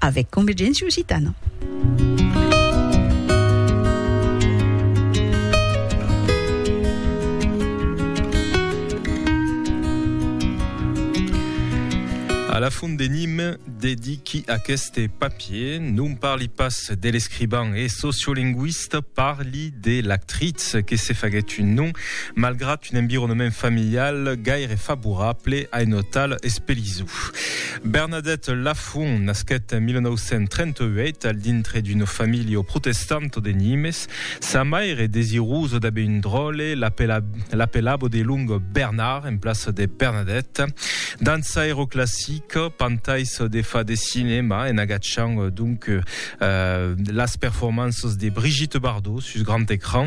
Avec Convergència Occitana. A la fon de Nîmes, dediqui aqueste papier, non parli pas de l'escriban e sociolinguista, parli de l'actritz que se faguèt un nom, malgrat un environnement familial gaire favorable a un otal espelizou. Bernadette Lafont Twoon nasquèt en 1938 al dintre d'una familha protestanta de Nimes. Sa maire, desirosa d'aver un dròlle, l'apelava de long Bernard en plaça de Bernadette. Dança aeroclassica, pantais de fa de cinèma en agachant donc las performanças de Brigitte Bardot sus grand ecran.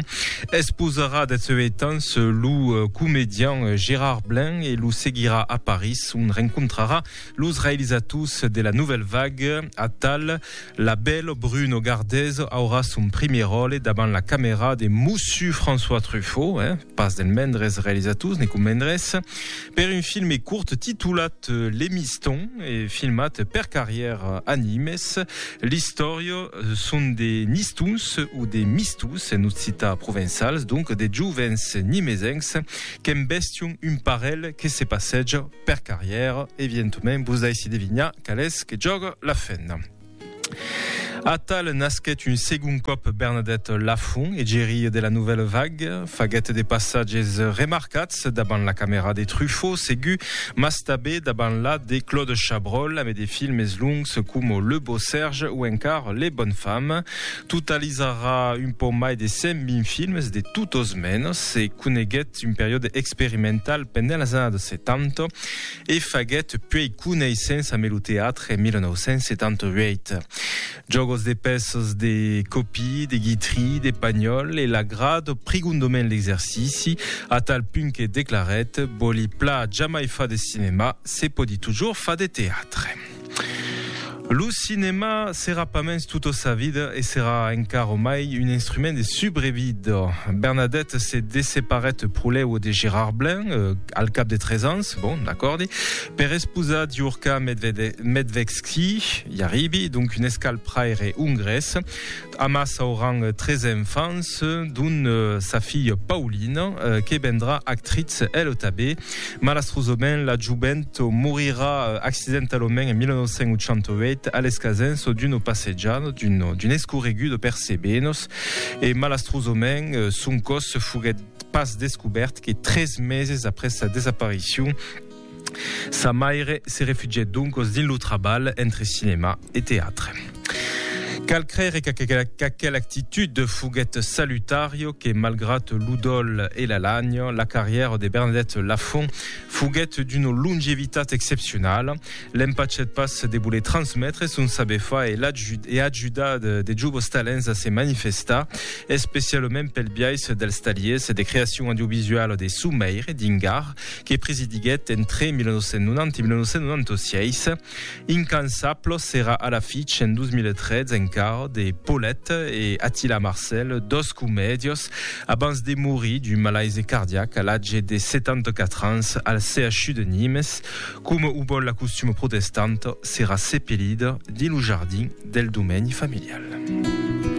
Esposarà de 18 ans lo comedian Gérard Blain e lo seguirà a París ont rencontrarà Los realizators de la Nouvelle Vague, atal, Labèl, Bruno Gardès aurà son primièr ròle davant la camèra de Moussú François Truffaut, eh? pas del mendres realizators, ne convendrètz, per un filme court titolat Les Mistons e filmat per Carrièr Animes. L'istòria son de Nistons o de Mistous en occitan provençals, donc de jovens nimesencs qu'embèstion un parelh que se passèja per carrièr, evientoment vos aissi devinhar qual es que jòga la fenna. Atal nasquèt un segon còp Bernadette Lafont, egeria de la Nouvelle Vague, faguèt de passatges remarcats davant la camèra de Truffaut, segur, mas tabé davant la de Claude Chabrol, amé de filmes longs coma Le Beau Serge o encar Les Bonnes Femmes. Totalizarà un pauc mai de 120 filmes de totos menos e coneguèt un periòde experimental pendent las annadas 70 e faguèt puèi coneissença amb lo teatre en 1978. Jògos de pèças de Copí, de Guitry, de Pagnòl e l'agrada prigondament l'exercici, a tal punt que declarèt, Vòli plan jamai far de cinèma, se pòdi totjorn far de teatre. Lo cinèma serà pas mens tota sa vida e serà encara mai un instrument de subrevida. Bernadette se desseparèt pro lèu de Gérard Blain, al cap de tres ans, bon, d'acòrdi, per esposar Diurka Medvedevsky, i arribi, donc un escalpraire ongrés. Amassa auran tres enfants, dont sa filha Paulina, que vendrà actritz ela tanben. Malastrosament, la jovent morirà accidentalament en 1988 a l'escasença d'una passejada, d'un escorregudo per Sebenos, e malastrosament son còs foguèt pas descobèrt que tres meses après sa desaparicion. Sa maire se refugièt doncos dins lo trabalh entre cinèma e teatre. Cal crèire qu'aquela actitud foguèt salutària, que malgrat lo dòl e la lània, la carrièra de Bernadette Lafont foguèt d'una longevitat excepcionala. L'empachèt pas de voler transmetre son saber far e ajudar de jovos talents a se manifestar, especialament pel biais dels taliers de creacion audiovisuala de son maire, Dingar, que presidiguèt entre 1990 e 1996, incansable serà a l'afich en 2013 encara de Paulette e Attila Marcel, dos comèdios, abans de morir d'un malaise cardiac a l'atge de 74 ans al CHU de Nimes, coma o vòl la costuma protestanta, serà sepelida dins lo jardin del domeni familial.